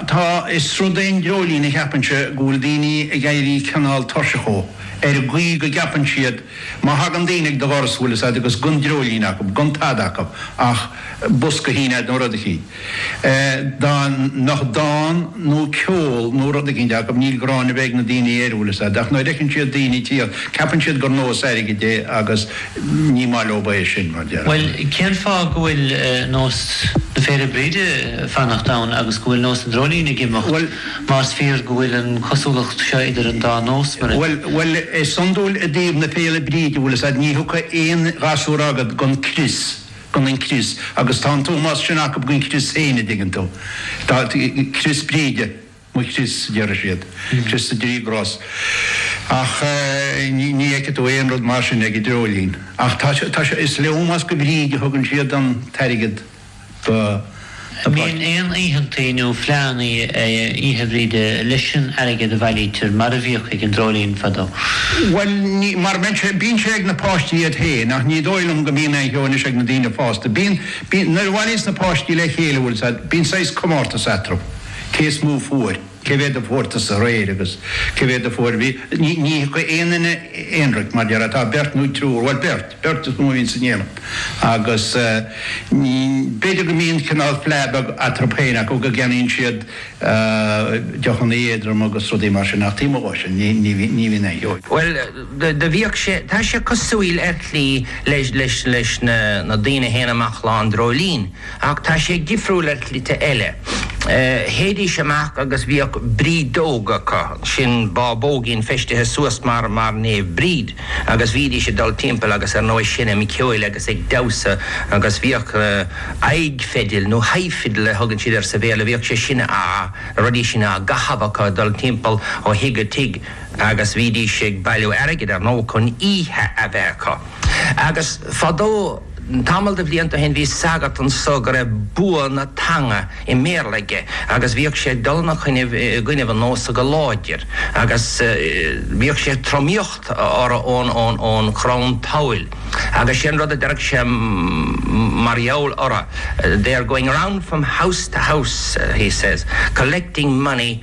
Tá, is rud é an dreoilín a cheapaimse go bhfuil daoine ag éirí cineál tuirseach dhó, ar an gcaoi go gceapann siad má thagann daoine ag do dhoras go bhfuil fhios agat agus gan dreoilín acu, gan tada acu ach bosca tin acu nó rud eicínt. Dá mbeadh dán nó ceol nó rud eicínt acu, ní ghráin a bheadh ag na daoine air, go bhfuil fhios agat, ach nuair a fheiceann siad daoine ag tíocht, ceapann siad gur nós airgid é agus. Ní maith leob é sin, mar deir Bhuel, an. cén fáth go bhfuil nós na Féile Bríde ag fanacht ann agus go bhfuil nós an dreoilín ag imeacht, Bhuel. más fíor go bhfuil an cosúlacht seo idir an dá nós, mar a. Bhuel, bhuel, is iondúil i dtaobh na Féile Bríde, bhfuil 'fhios a'd, ní thiocfaidh aon ghasúr a'gad gan crios, gan an crios, agus tá an t-ómós sin acub don chrios féin, a' dtuigeann tú, tá, crios Bríde. Mo chrios, a deireadh siad, crios na dtrí gcros. Ach ní fheicfidh tú aon rud mar sin ag an dreoilín. Ach tá sé, tá sé, is le ómós do Bhríd a thugann siad an t-airgead do na páistí. Bíonn aon oícheanta nó fleánna Oíche Bhríde leis an airgead a bhailítear, mar a bhíodh ag an dreoilín fadó. Bhuel, ní, mar bíonn sé, bíonn sé ag na páistí iad féin, ach ní dóigh liom go mbíonn aon cheo anois ag na daoine fásta. Bíonn, bíonn, nuair a bhailíos na páistí le chéile, bhuel, sea, bíonn saghas comórtas eatarthu. Cé is mó fuair? Cé mhéad a fuair tusa aréir agus cé mhéad a fuair sí. Ní thiocfaidh aon duine aonraic mar deir tá beirt nó triúr, bhuel beirt, beirt is mó a bhíonn ann déanaim agus b'fhéidir go mbíonn cineál fleá beag eatarthu féin acu go gceannaíonn siad deochanna éadroma agus rudaí mar sin ach taobh amuigh de sin ní bhíonn aon. Bhuel, do bhíodh sé, tá sé cosúil ar shlí leis na daoine a théann amach Lá an Dreoilín. Ach tá sé difriúil ar shlite eile. Théidís amach agus bhíodh brídeog acu, sin bábóigín feistithe suas mar, mar Naomh Bríd, agus bhídís ag dul timpeall agus ar ndóigh seinm ceoil agus ag damhsa agus bhíodh aghaidh fidil nó high fiddle a thugann siad air sa Bhéarla, bhíodh sé sin a, na rudaí sin á gcaitheamh acu ag dul timpeall ó thigh go tigh agus bhídís ag bailiú airgid ar ndóigh chun oíche a bheith acu. Agus fadó. Tamall de bhlianta ó shin bhí sagart anso go raibh bua na teanga i mBéarla aige agus bhíodh sé ag dul ina choinnibh i gcoinnibh an nósa go láidir agus bhíodh sé ag tromaíocht orthu ón gcrann tabhaill agus sé an rud a deireadh sé mar gheall orthu They are going round from house to house he says, collecting money.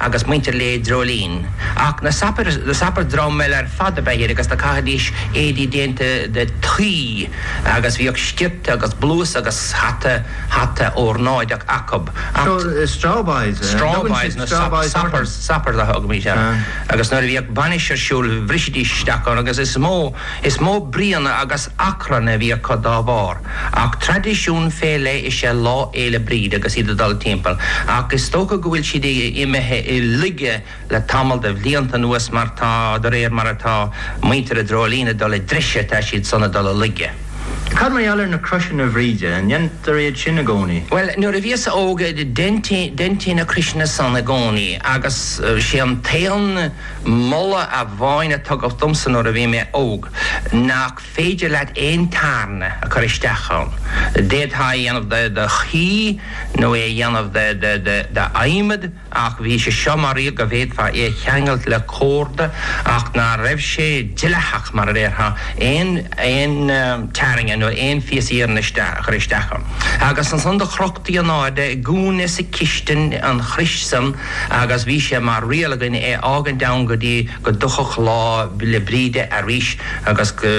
agus muintir Lae an Dreoilín. Ach na sopairs dream eile ar fad ab ea iad agus do caithidís éadaí déanta de thuí agus bhíodh sciorta agus blús agus hata, hata órnáideach acu. Ach. So, strawboys, eh? Strawboys, na sopairs, sopairs a thugaimís orthu. Agus nuair a bhíodh bainis ar siúl bhrisidís isteach ann agus is mó. Is mó bruíon agus achrann a bhí acu dá bharr, ach traidisiún fé leith is ea Lá Fhéile Bríde agus iad ag dul timpeall, ach is dócha go bhfuil siad imithe i laige le tamall de bhlianta anuas mar tá, de réir mar atá muintir a' Dreoilín ag dul i dtreise tá siad san ag dul i laige. Cad mar gheall ar na croiseanna Bhríde, an ndéantar iad sin i gcónaí? Bhuel, nuair a bhíos-sa óg deintí, deintí na croiseanna san i gcónaí agus sé an t-aon, Moladh amháin a tugadh domsa nuair a bhí mé óg nach féidir leat aon tairne a chur isteach ann. D'fhéadfá é a dhéanamh de de thuí nó é a dhéanamh de de de d'adhmad ach bhí sé seo mar dhlí go bhféadfá é a cheangailt le corda ach ná raibh sé dleathach mar a déarfá aon aon tairne nó aon phíosa iarainn a chur isteach ann. Agus ansan do chrochtaí an airde i gcúinne sa chistin an chrois san agus bhí sé mar riail againn é fhágaint ann go dtí go dtiocfadh Lá 'le Bríde arís agus go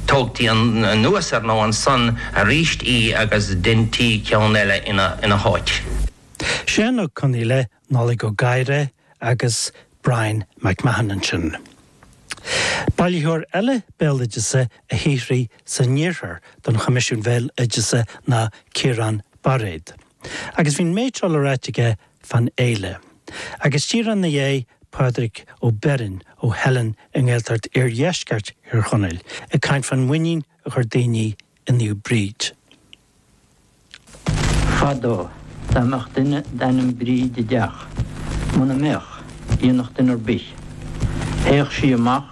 dtógtaí anuas ar ndóigh ansan arís í agus deintí ceann eile ina háit. Seán Ó Conghaile, Nollaig Ó Gadhra agus Bryan MacMahon ansin. Bailitheoir eile béaloideasa a shaothraigh san iarthar don Choimisiún Béaloideasa ná Ciarán Bairéad. Agus bhí an méid seo le ráit aige Fán fhéile. Agus díreach ina dhiaidh, Pádraig Ó Beirn ó Theileann i nGaeltacht Iardheisceart Thír Chonaill ag caint fán mhuinín a chuir daoine i Naomh Bríd. Fadó, dá mbeadh duine d'ainm Bríd i dteach, muna mbeadh, dhéanfadh duine ar bith, théadh sí amach